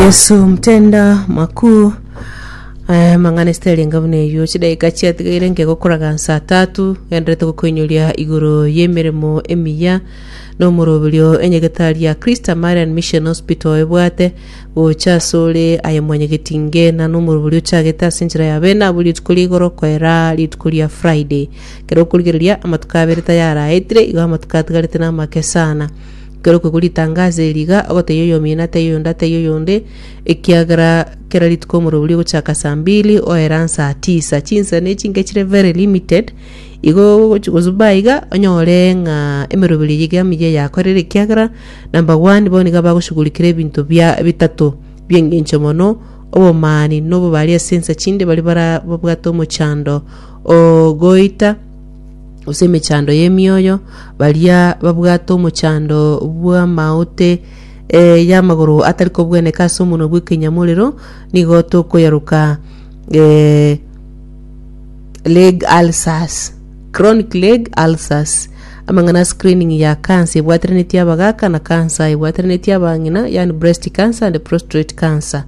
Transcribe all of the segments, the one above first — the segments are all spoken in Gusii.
yesu mtenda makuu Eh, mang'ana esitarenga buna eyio chidaika chiatigaire ngegokoraga nsa tatu genderete gokoinyoria igoro y'emeremo emiya nomoroberio enyegetari ya krista marian mission hospital ebwate gocha asore aye mwanyegeti ngena nomoroberio ochagete ase enchera ya bene abo rituko ria igoro koera rituko ria friday kero okorigereria amatuko abere tayaraetire igo amatuko atigarete namake sana Ekero okogwa ritanga ase eri iga, ogotebia oyomino ataiyo oyonde ataiyo oyonde, ekiagera kera rituko omorero oria ogochaka saa mbili oere ang'e saa tisa. Chinsa na echi inche chire very limited, igo ogochi- kosuba aiga iga onyore ng'a emeroberi eyio iga emiya yakorire ekiagera number one bono nigo abagoshugurikire ebinto bia bitato bia eng'encho mono, obomani na obobari ase ensa chinde baria bara- babwate omochando o goita, gose emechando y'emioyo, baria babwate omochando bw'amaote eh, y'amagoro atari kobweneka ase omonwa bw'ekenyamorero, nigo tokoyaroka eh, leg ulcers chronic leg ulcers amang'ana a screening ya cancer ebwateranetie abagaka na cancer ebwateranetie abang'ina yani breast cancer and prostate cancer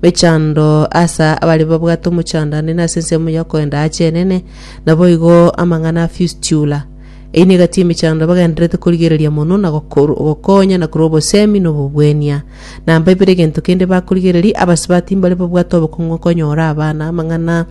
mechando asa abari babwate omochando ande nase ensemo yokoenda ache enene Naboigo amang'ana a fistula einigati emechando bagendererete korigereria mono na gokor- gokonya na korwa obosemi na obobwenia. Nambaibera egento kende bakorigereria, abasibati mbare babwate obokong'u okonyora abana. Amang'ana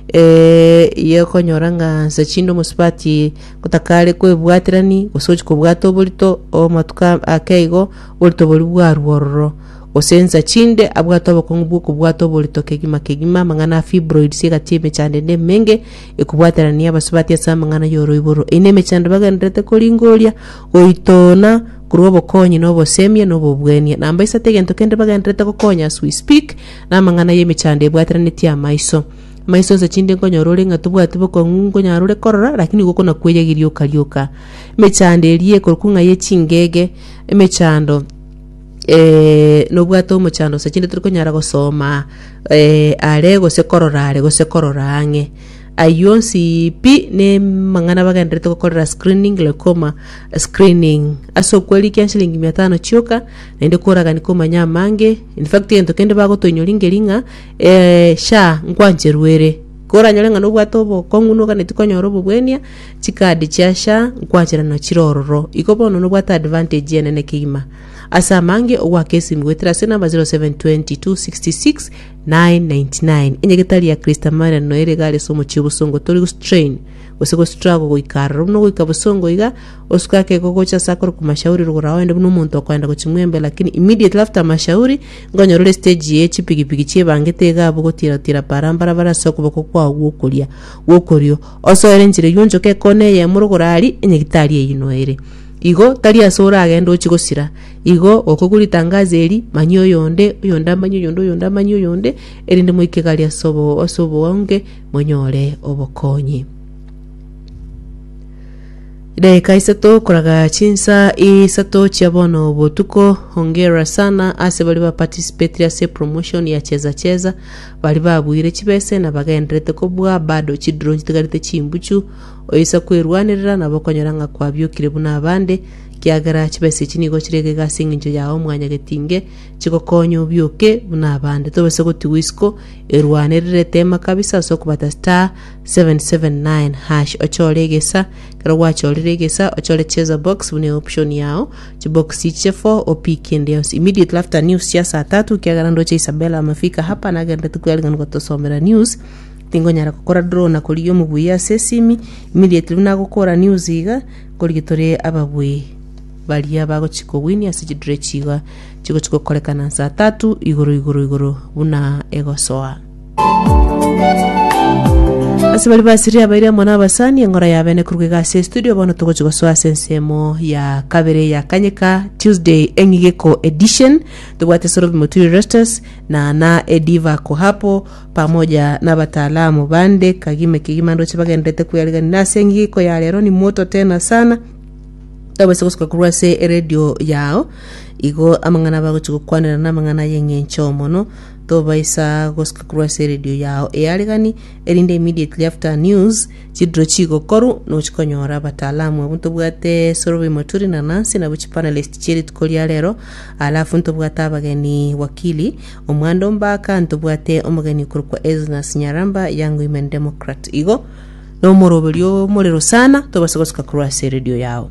eh, ye okonyora ng'a nsa chinde omosibati gotakare kwebwaterani gose gochi kobwata oborito omatuko ake igo oborito bori bwarwa ororo. Gose ensa chinde abwate obokong'u bw'okobwata oborito kegima kegima, amang'ana a fibroids egati emechando ende emenge, ekobwaterania abasubati ase amang'ana y'oroiboro, eina emechando bagendererete koringoria, goitoona, korua obokonyi na obosemie na obobwenia. Namba isato egento kende bagendererete gokonya as we speak, namang'ana y'emechando ebwateranetie amaiso. Amaiso ensa chinde nkonyora ore ng'a tobwati bokong'u nkonyara ore korora, lakini igo okona kweyegiria okarioka. Emechando eria ekorokwa ng'a ye chingege, emechando Eh, nobwate omochando gose chinde tiri konyara gosoma eh, are gose korora are gose korora ang'e ayio onsi pi ne mang'ana bagenderete gokorera screening glaucoma screening ase okweri kia shilingi mia tano chioka naende koragani komanya amange in fact egento kende bagotoinyoringeria ng'a eh, sha nkwancherwere koranyore ng'a nobwate obokong'u noganetie konyora obobwenia Chicard chia sha nkwachera na chire ororo. Iko bono nobwate advantage enene kegima. Ase amange ogwaka esimu goetera ase namba 0720 266 999. Enyegetari ya Christa Marian noyo ere igare ase omochie obosongo tori gostrain gose go struggle goika aroro buna ogoika bosongo iga osuke akego gocha ase akore kumashauri rogora oende buna omonto okoenda gochi mwembe lakini immediately after amashauri ngonyora ore stage ye chipigipigi chiebangete iga abwo gotira tira para mbarabara ase okoboko kwao gwokoria gwokorio Osoere enchera eyio onchoke ekoona eyemo rogoro aria enyagitari eyio ere. Igo tari ase oragende ochie gosira. Igo gokogwa ritangazo eri, manyia oyonde, oyonde amanye oyonde, oyonde amanye oyonde, erinde moike gari ase obo- ase oboonge, monyore obokonyi. Edageka isato koraga chinsa isato chia bono botuko, hongera sana ase baria ba participated ase promotion ya cheza cheza, Baria babuire chibese na bagendererete kobua bado chidiro chitigarete chimbuchu, oisa kwerwanerera nabo okonyora ng'a kwabiokire buna abande, kiagera chibese echi nigo chire egega ase engencho yao mwanyagetinge, chigokonye obioke buna abande. Tobasa gotigwa isiko erwanerere tema kabisa ase okobata star 779 hash ochore egesa, ekero gwachorire egesa ochore cheza box buna eoption yao, chibokisi ichie fo opi kende yonsi immediately after news chia saa tatu kiagera ndoche isabela amafika hapa nagende tikwerigan gotosomera news tingonyara gokora draw na korigia omobui ase esimi immediately buna agokora news iga nkorigia tore ababui baria bagochi kowinia ase chidrechi iga chigochi gokorekana saa tatu igoro igoro igoro buna egosoa Ase baria basirie abaire amo nabasani engora y'abene korwa iga ase estudio bono togochi gosoa ase ensemo ya kabere ya kanyeka Tuesday eng'igeko edition tobwate Sorobi Moturi Restus na na Ediva Kohapo pamoja na abataalamu bande Kagime Kigima ndoche bagenderete kweriganina ase eng'igeko ya rero ni moto tena sana tobase gosuka korwa ase eredio yao igo amang'ana bagochi gokwanera na amang'ana y'eng'encho mono Tobaisa gosika korwa ase eredio yao eyaregani, erinde immediately after a news, chidiro chigokoru, nochi konyora abataalamu abwo ntobwate Sorobe Maturi na Nancy nabo chipanelist chie rituko ria rero, alafu ntobwate abageni Wakili Omwando Mbaka, ntobwate omogeni okorokwa Esnus Nyaramba, Young Women Democrat. Igo nomoroberio omorero sana, tobaisa gosika korwa ase eredio yao.